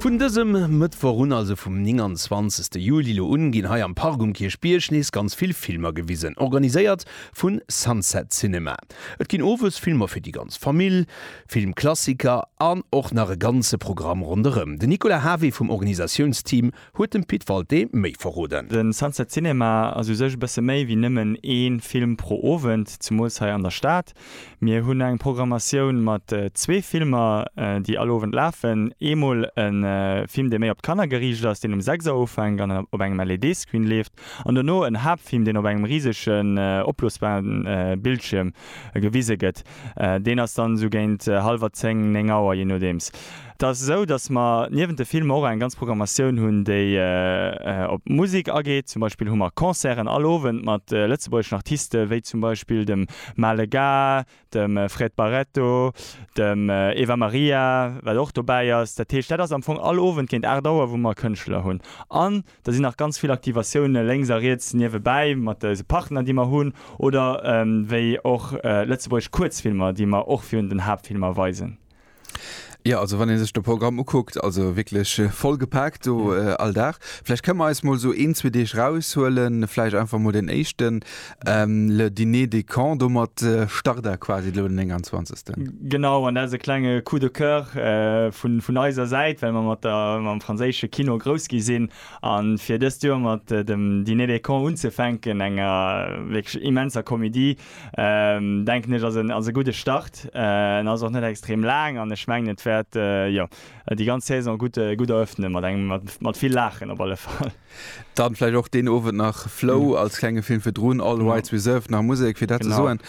Vun dësem Mëttwoch un, also vum 29 Juli lo un, ginn hei am Park um Kierchbierg nees ganz vill Filmer gewisen, organiséiert vu Sunset Cinema. Et ginn owes Filmer fir déi ganz Famill, Filmklassiker an och nach e ganze Programm ronderëm. Den Nicolas Havé vum Organisatiounsteam huet dem Pit Walté méi verroden. De Sunset Cinema ass u sech e bësse méi wéi nëmmen ee Film pro Owend, zemools hei an der Stad. Mir hunn eng Programmatioun mat zwee Filmer, déi all Owend lafen. Eemol e Film, dee méi op d'Kanner geriicht ass, deen um 6 Auer ufänkt an op engem LED-Screen leeft, an dono en Haaptfilm, deen op engem risegen, opblosbare Bildschierm gewise gëtt. Deen ass dann esou géint hallwer zéng, néng Auer, jee nodeems. Et ass esou, datt mer niewent de Filmer och eng ganz Programmatioun hunn, déi op d'Musek ageet. Zum Beispill hu mer Concerten all Owend mat lëtzebuergeschen Artiste wéi zum Beispill dem Male Gars, dem Fred Barreto, dem Eva Maria, wat och dobäi ass. Dat heescht, dat ass am Fong all Owend géint 8 Auer, wou mer Kënschtler hunn. An da sinn nach ganz vill Aktivatioune lénks a riets niewebäi mat eise Partner, déi mer hunn, oder wéi och lëtzebuergesch Kuerzfilmer, déi mer och virun den Haaptfilmer weisen. Ja, also wann een sech de Programm ukuckt, also wierklech äh, voll gepaakt do mhm. äh, all Dag. Vläicht kënne mer eis mol so een, zwee Deeg raushuelen, vläicht einfach mol den éischten ähm, le Dîner de Camp do mat äh, Starter quasi lo den 29. Genau, an dat ass e klenge Coup de Coeur äh, vun, vun eiser Säit, well mer mat der mam franséische Kino grouss gi sinn an fir dëst Joer mat äh, dem Dîner de Camp unzefänken, enger äh, wierklech immenser Komedie, denken ech ass en ass e gudde Start. En ass och net extrem laang an ech mengen et wäert jo déi ganz Saison gutt gutt erëffnen mat engem mat mat vill Laachen op alle Fall. Dann vläicht och deen Owend nach Flow als klenge Film virdrun, All Rights Reserved, nach Musek fir dat ze soen.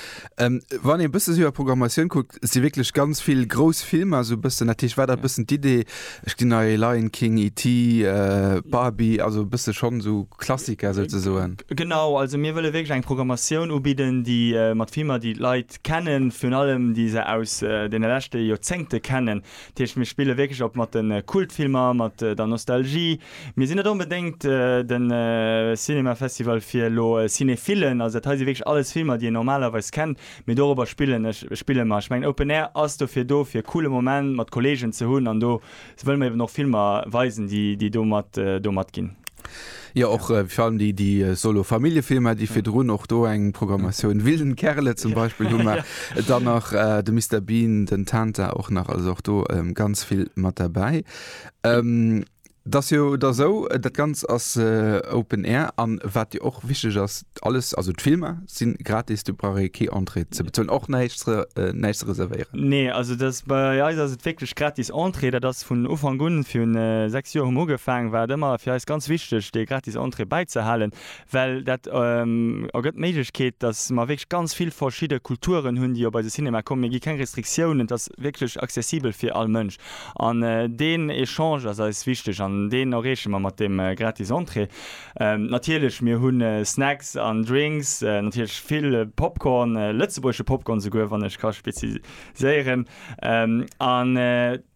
Wann een e bësse sou iwwer d'Programmatioun kuckt, si wierklech ganz vill grouss Filmer esou e bëssen. Dat heescht, war dat e bëssen d'Idee, ech ginn nei Lion King, ET, Barbie, also e bësse schonn esou Klassiker souzesoen? Genau, also mir wëlle wierklech eng Programmatioun ubidden, déi mat Filmer, déi d'Leit kennen, virun allem déi se aus deene leschte Joerzéngte kennen. Dat heescht, mir spille wierklech op mat de Kultfilmer, mat der Nostalgie. Mir sinn net onbedéngt de Cinéma-Festival fir elo Cinéphillen, also dat hei si wierklech alles Filmer, déi een normalerweis kennt, Mee dorobber spillen ech, spille mer. Ech mengen Open Air ass dofir do, fir e coole Moment mat Kolleegen ze hunn an do wëlle mer eben och Filmer weisen, déi domat domat ginn. Jo, och fir allem déi déi Solo Familljefilmer, déi virdrun och do eng Programmatioun, Wilden Kerle zum Beispill hu mer, dann nach de Mister Bean, den Tanta och nach, also och do ganz vill mat derbäi. Dat ass jo da sou, dat Ganzt ass Open Air an wat jo och wichteg ass, alles, also d'Filmer si gratis, do brauch ee kee Entrée ze bezuelen, och näischt näischt ze reservéieren? Nee, also dass, bei eis ass et wierklech gratis Entrée, dat ass vun Ufank un, fir 6 Joer hu mer ugefaangen, war et ëmmer fir eis ganz wichteg dee gratis Entrée bäizehalen, well dat ergëtt d'Méiglechkeet, dass mer wierklech ganz vill verschidde Kulturen hunn, déi op eise Cinema kommen. Mir gi keng Restriktiounen, et ass wierklech accessibel fir all Mënsch. An deen Echange ass eis wichteg an deen erreeche mer mat deem gratis Entrée. Natierlech, mir hu Snacks an Drinks, natierlech vill Popcorn, lëtzebuergesche Popcorn souguer, wann ech ka spezifiséieren. An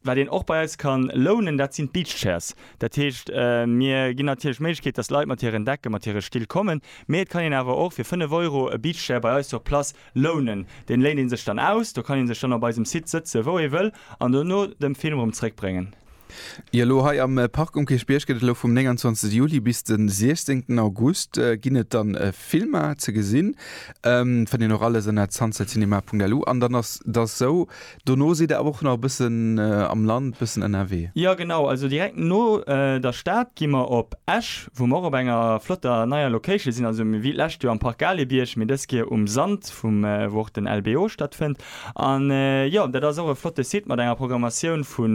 wat een och bei eis ka lounen, dat sinn d'Beach Chairs. Dat heescht, mir ginn natierlech d'Méiglechkeet, dass Leit mat hiren Decken, mat hire Still kommen, mee et kann een awer och fir 5 Euro e Beach Chair bei eis sur place Lounen. Deen léint een sech dann aus. Do kann een sech dann op eisem Site sëtzen wou ee wëll an do no dem Film erëm zréck bréngen. Jo elo hei am Park um Kierchbierg gëtt et elo vum 29 Juli bis den 16 August ginn et dann Filmer ze gesinn. Fënnt een och alles ënner zandsellcinema.lu an dann ass et ass esou Dono sidd der awer och nach e bëssen am Land, e bëssen ënnerwee. Jo genau, also direkt no der Stad gi mer op Esch, wou mer och op enger flotter neier Location sinn. Also mir wéi d'lescht Joer am Parc Gaalebierg, mee dës Keer um Sand vum, wou och den LBO stattfënnt. An jo, dat ass och e flotte Site mat enger Programmatioun vu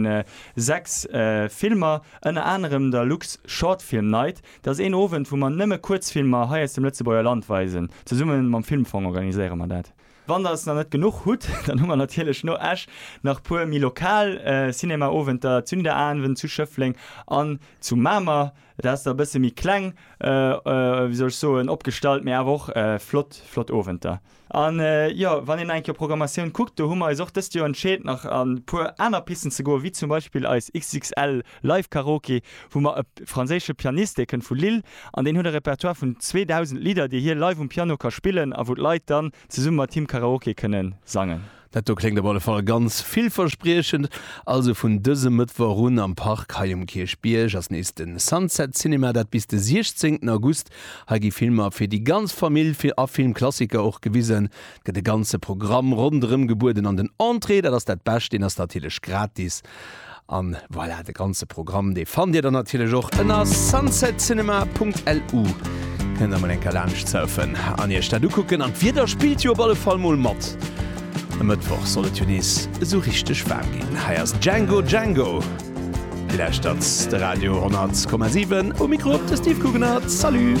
6 Filmer, ënner anerem der Lux Short Film Night. Dat ass een Owend, wou mer nëmme Kuerzfilmer hei aus dem Lëtzebuerger Land weisen. Zesumme mam Filmfong organiséiere mer dat. Wann der s nach net genuch hutt, dann hu mer natierlech no Esch nach puer méi lokal Cinema-Owenter, Zünderavend zu Schëffleng an zu Mamer. Dat ass da e bësse méi kleng, wéi soll ech soen, opgestallt, mee awer och flott, flott Owenter. An jo, wann een nach eng Kéier Programmatioun kuckt, do hu mer eis och dëst Joer entscheet nach an e puer aner Pisten ze goen, wéi zum Beispill eis XXL. Live Karaoke, wou mer e franséische Pianist, dee kënnt vu Lille an deen huet e Repertoire vun 2.000 Lidder, déi hie live um Piano ka spillen a wou d'Leit dann zesumme mat him Karaoke kënne sangen. Dat do kléngt op alle Fall ganz villverspriechend. Also vun dësem Mëttwoch un am Park hei um Kierchbierg ass nees de Sunset Cinema, dat bis de 16 August. Hei gi Filmer fir déi ganz Famill a Filmklassiker och gewisen. Et gëtt e ganze Programm ronderëm gebueden an den Entrée, dat ass dat Bescht, deen ass natierlech gratis. An voilà, de ganze Programm, dee fannt Dir dann natierlech och ënner sunsetcinema.lu. Kënnt emol eng Kéier laanscht surfen an Iech dat ukucken. An d'Wieder spillt jo op alle Fall mol mat. E Mëttwoch soll et jo nees esou richteg waarm ginn. Hei ass Django Django. Dir lauschtert de Radio 100,7. Um Mikro de Steve Guggenert. Salut!